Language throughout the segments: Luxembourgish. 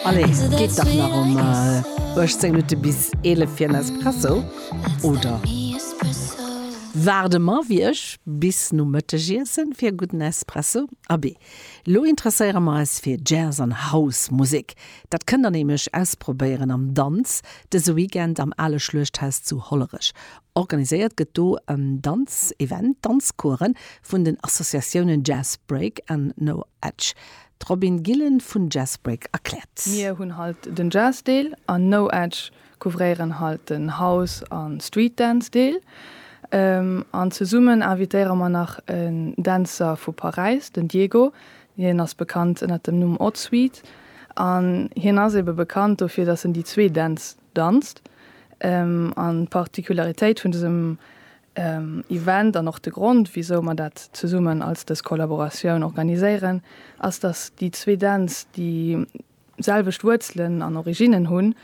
Allez, geet dach nach um 18 Minutte bis 11 fir en Espresso, oder? Waarde mer, wéi ech, bis nom Mëttegiessen fir e gudden Espresso. Abee, lo interesséiere mer eis fir Jazz an House Musek. Dat kënnt der nämlech ausprobéieren am Danz dëse Weekend am Ale Schluechthaus zu Hollerech. Organiséiert gëtt do e Danzevent, Danzcoursen vun den Associatiounen Jazz Break an No Edge. D'Robin Gillen vun Jazzbreak erkläert. Mir hunn halt den Jazz Deel an No Edge couvréieren halt den House an Street Dance Deel. An zesummen invitéiere mer nach en Dänzer vu Paräis, den Diego, hien ass bekannt ënnert dem Numm Odd Sweet an hien ass ebe bekannt dofir dass en déi zwee Dänz danzt. An d'Particularitéit vun dësem Event an och de Grond, wisou mer dat zesummen als dës Kollaboratioun organiséieren, ass, dass déi zwee Dänz déi selwecht Wuerzelen an Originnen hunn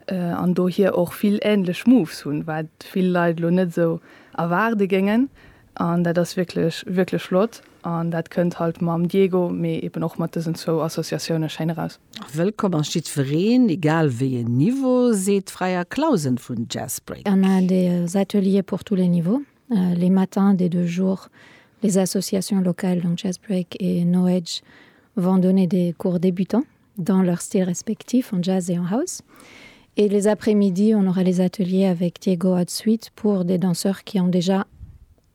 an dohier och vill änlech Moves hunn, wat vill Leit elo net esou erwaarde géingen. An dat ass wierklech, wierklech flott. An dat kënnt halt mam Diego, mee eben och mat dësen zwou Associatioune schéin eraus. Wëllkomm ass jiddwereen, egal wéi en Niveau, seet d'Freya Clausen vun Jazzbreak. On a des ateliers pour tous les niveaux, les matins des deux jours, les associations locales, donc Jazzbreak et No Age, vont donner des cours débutants dans leurs styles respectifs, en jazz et en house. Et les après-midi, on aura les ateliers avec Diego Hot Suite pour des danseurs qui ont déjà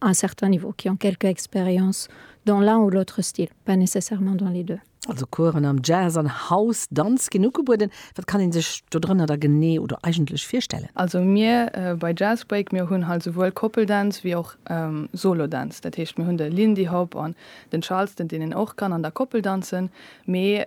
à un certain niveau, qui ont quelque expérience dans l'un ou l'autre style, pas nécessairement dans les deux. Also Coursen am Jazz an House Danz ginn ugebueden. Wat kann een sech dodrënner da genee oder eigentlech virstellen? Also mir bei Jazz Break, mir hunn halt souwuel Couple Dance ewéi och Solo Dance. Dat heescht mir hunn de Lindy Hop an den Charleston, deen een och kann an der Koppel danzen, mee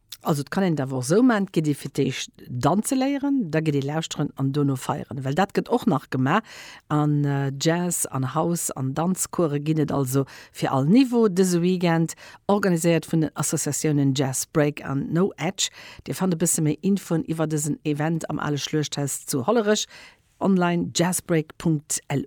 Also et kann een et awer och esou maachen, et gëtt ee fir d'éischt danze léieren, da gëtt ee lauschteren an dono feieren, well dat gëtt och nach gemaach an Jazz an House an Danzcourse ginn et also fir all Niveau dëse Weekend, organiséiert vun den Associatiounen Jazz Break an No Edge. Dir fannt e bësse méi Infoen iwwer dësen Event am ale Schluechthaus zu Hollerech online, jazzbreak.lu.